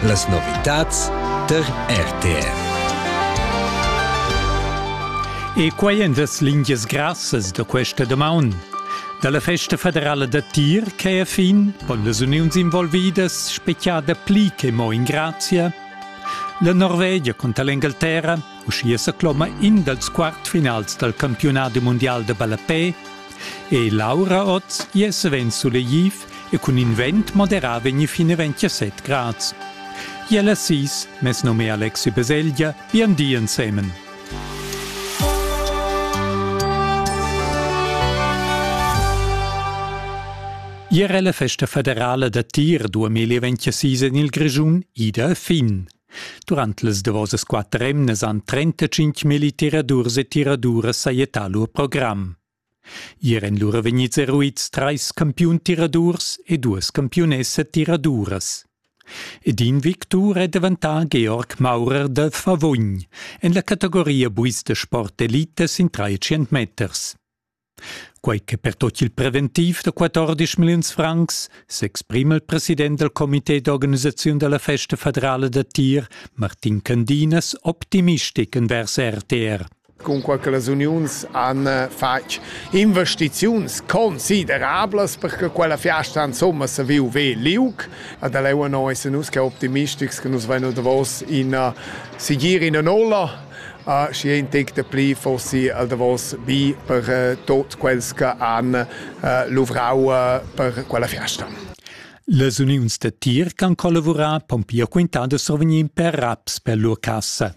Las novitads tar RTR. E quai èn las lingias grassas da questa damaun. Da la festa federala da tir che è fin pon las uniuns involvidas speziar dapli che mo in grazia. La Norvegia contra l'Engalterra, uschia sa cloma in dals quartfinals dal campiunat mundial da ballapè, e Laura Oz, gia savens sulegliv, e cun in vent moderà vegni fin e ventg a set grads. Iel a sis, mes nome Alexi Beselgia, vian di ensemen. Ier è la festa federala da tir 2026 en il Grischun ida a fin. Durant las davosas quatter emnas han 35 mili tiradurs e tiraduras sajettà lur program. Ier èn lura vegnids eruids trais campiun tiradurs e duas campiunessa tiraduras. Ed in victur è daventà Georg Maurer da Favogn en la categoria buis da sport elita sin trais meters. Quai che per tot il preventiv da 14 milliuns francs s'exprima il president dal comité d'organisaziun della festa federale da tir, Martin Candinas, optimistic envers RTR. cunquai che las uniuns han fatg investiziuns considerablas per che quella fiasta insomma se viu ve liug. Ad Eleua no essen nus che optimistics che nus veino davos in sigir in ola uh, și ein tec de pli fossi al davos bi per uh, tot quels che han uh, luvrau uh, per quella fiasta. Las uniuns da tir che han collavurat pon pia quintà da survegnir per raps per lur cassa.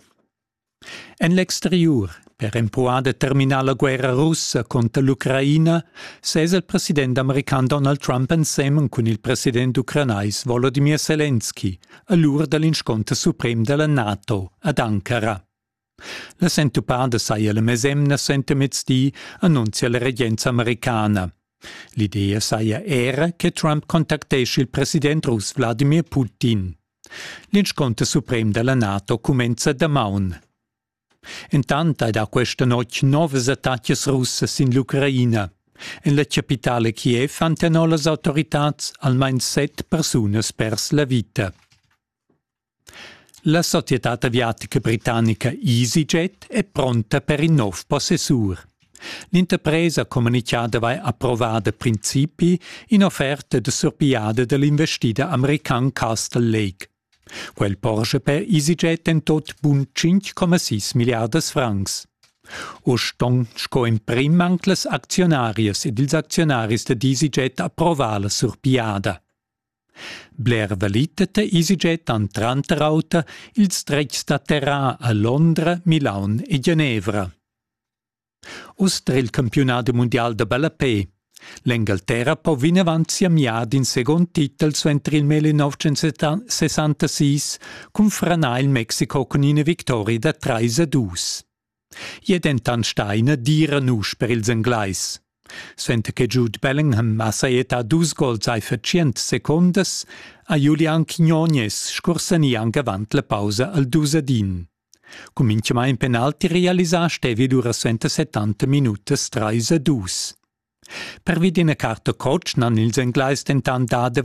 En l'exteriur, per empruar da terminar la guerra russa conter l'Ucraina, sez il president american Donald Trump ensemen cun il president ucranais Volodymyr Zelensky a l'ura dall'inscunter suprem dalla NATO ad Ankara. La sentupada saja la mesemna sentemezdi, annunzia la regenza americana. L'idea saja era che Trump contactesce il president russ Vladimir Putin. L'inscunter suprem dalla NATO cumenza damaun. Entant hai dà questa notg novas attacas russas sin l'Ucraina. En la chapitala Kiev hanno las autoritads almain set persunas pers la vita. La società aviatica britannica EasyJet è pronta per in nov possessur. L'interpresa communitgada vai approvar da principi in'offerta de surpigliada dell'investida american Castle Lake. Quel porscha per EasyJet en tot bun 5,6 milliardas francs. U ston sco emprim anc las aczionarias ed ils aczionaris da EasyJet approvar la surpigliada. Bler valitet EasyJet han tranter auter ils dretgs da terra a Londra, Milaun e Genevra. Uss dra il campiunadi mundial da ballapè. L'Engalterra po vinavant siamiar d'in segund titel suenter il mel in 1966 cun franar il Mexico cun ina victoria da 3 a 2. Gli è dentant stà ina dira nusch per ils Englais. Suenter che Jude Bellingham ha sajettà dus gols ai fer tschient secondas ha Julian Quignonez scursanì anc avant la pausa al dus ad in. Cun minchamaing penalti realisà stevi durasenta settanta minutas trais a dus. Pervi d'üna carta cotsch n'han ils Englais dentant dà